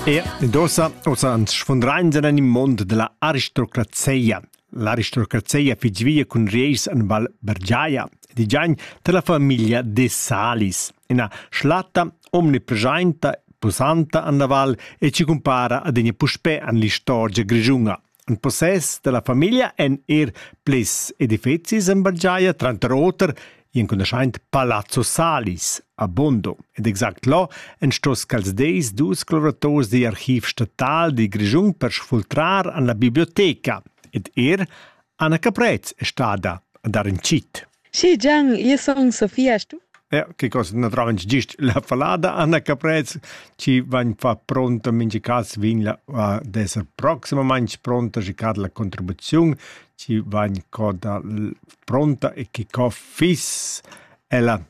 E dosa osa ans sfundrain en il mond della aristocrazia. L'aristocrazia fitg via cun reis en Val Bergiaia, digiain della famiglia de Salis, ina schlatta omnipresenta posanta an la val e ci cumpara adegna puspè an l'istorgia grigiunga. In possess dalla famiglia ein er plis edifecis en bagiaia, tranter oter gl'enconoschaint Palazzo Salis a Bondo. Ed exact là en stos quels deis dus clorators digl archiv statal dil Grischun per sfultrar an la biblioteca. Ed er Anna Caprez è stada a dar in cit. Sì, Gian, io sono Sofia, tu? Ja, che cosa naturalmente gist la falada Anna Caprez ci van fa pronta mingi cas vin la uh, desa proximamente pronta ci cad la contribuzione ci van coda pronta e che co fis ella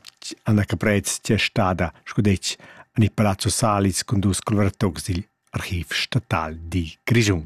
Anna Caprez c'è stata scudec an il Palazzo Salis con dus coloratori dil archiv statal di Grigiun.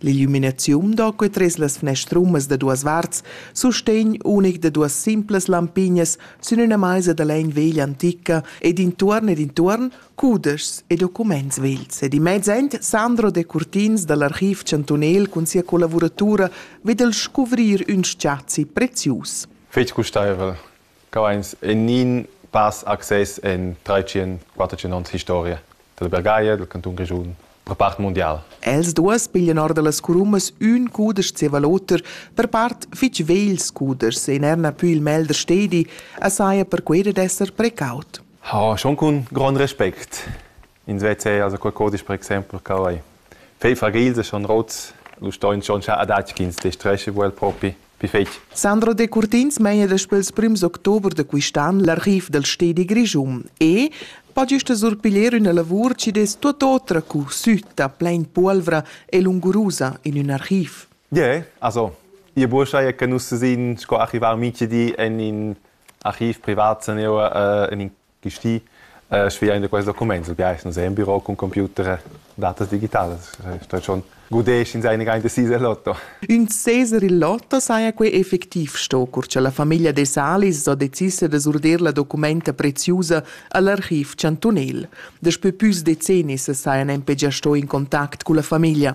L'illuminaziun da quei tres las fnestrumas da duas varts sustegn unic da duas simplas lampignas sün üna maisa da legn veglia antica ed intuorn ed intuorn cudeschs e documents vegls ed in mezz end Sandro Decurtins dall'archiv chantunel cun sia collavuratura vid el scuvrir ün spazi prezius. Fetg gustaivel. Cavains nin pass access in 300-400 historia dalla Bergaglia, dal cantun Grischun, per part mundial. Els duas piglian or da las curummas ün cudesch zieva l'oter, per part fich vegls cudeschs e n'erna pü il mel da stedi, as saja per quei dad esser precaut. Ha schon cun grond respect ins veza also qualcosa per exempel quai fei fragils schon rots lu stoin schon scha adatg ch'ins destresche vuel propi pi fetg Sandro Decurtins meina daspö pels prims october da quist'an l'arriv dal stedi Grischun e pa gista surpiglier üna lavur chi dess tuot otra cu sütta, plain puolvra e lungurusa in ün archiv. Ie, also ie buoschai che nus sin sco archivar minchedi en in archiv privat san eu in in gesti sviain da quest document. Il biais nus è in büro cun computer datas digitalas. Sto schon gudesch in seine rein decise lotto. Ün seser il lotto saja quai effectiv sto, cur cha la famiglia de Salis ho decis da surder la documenta preziusa al archiv chantunel. Daspö püs decennis sajan nempe già sto in contact culla famiglia.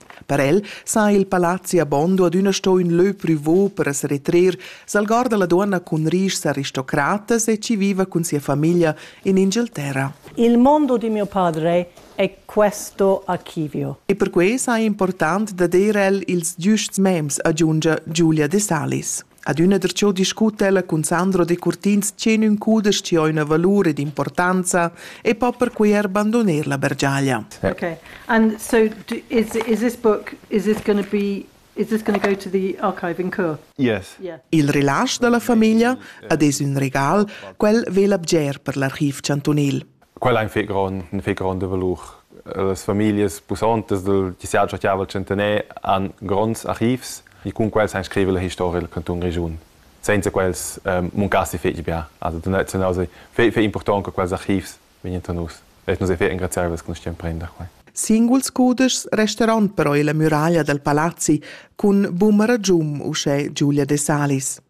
Per el sa il palazzi a Bondo adüna sto ün lö prüvo per as retrer, s'algorda la duonna cun rischs aristocratas e chi viva cun sia famiglia in Inghilterra. Il mondo di mio padre è questo archivio. E perquai sa important dad eir el ils giusts mems, aggiungia Giulia De Salis. Adüna der cho discuta ella cun Sandro Decurtins che ün cudesch chi ho üna valur ed importanza e po perquai er bandoner la bergiaglia. Okay. And so is is this book is this going to be is this going to go to the archive in Chur? Yes. Yeah. Il relasch da la famiglia ad es ün regal, quel vela bger per l'archiv chantunil. Quella ein fetg grond, ein fetg gronda valur. Las famiglias pussontas dal tissiar chastiavel centener han gronds archivs e cun quels han scrivere la historia del canton Grischun. Senza quels ehm, muncassi fetg bia. Also da nus ei fetg important che quels archivs vegnien tra nus. E nus ei fetg engraziabels che nus stiam prender quei. Singuls cudeschs resteran però illa muraglia dal palazzi cun buma ragium uschè Giulia De Salis.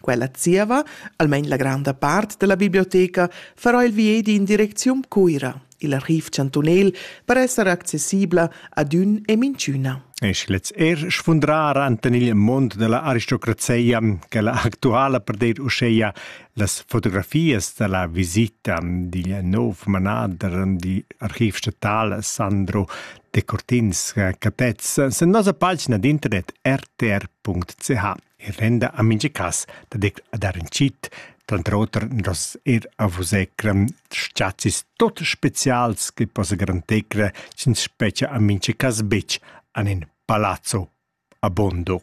Quella zieva, almain la granda part della biblioteca, farà il viedi in direcziun Cuira, il archiv chantunel, per esser accessibla ad ün e minchüna. E sche lez er sfundrar anten il mond della aristocrazia, che la actuala per dir uscheia las fotografias della visita digl nov manader di archiv statal Sandro de Cortins Catez sen nosa pagina d'internet rtr.ch. e renda a mincha cas daditg a dar ün tschit, tranter oter nos eir a vus ecrem s-chazzis tot specials che possa garantecre ch'ins spetgia a mincha cas betg an in palazzo abondo.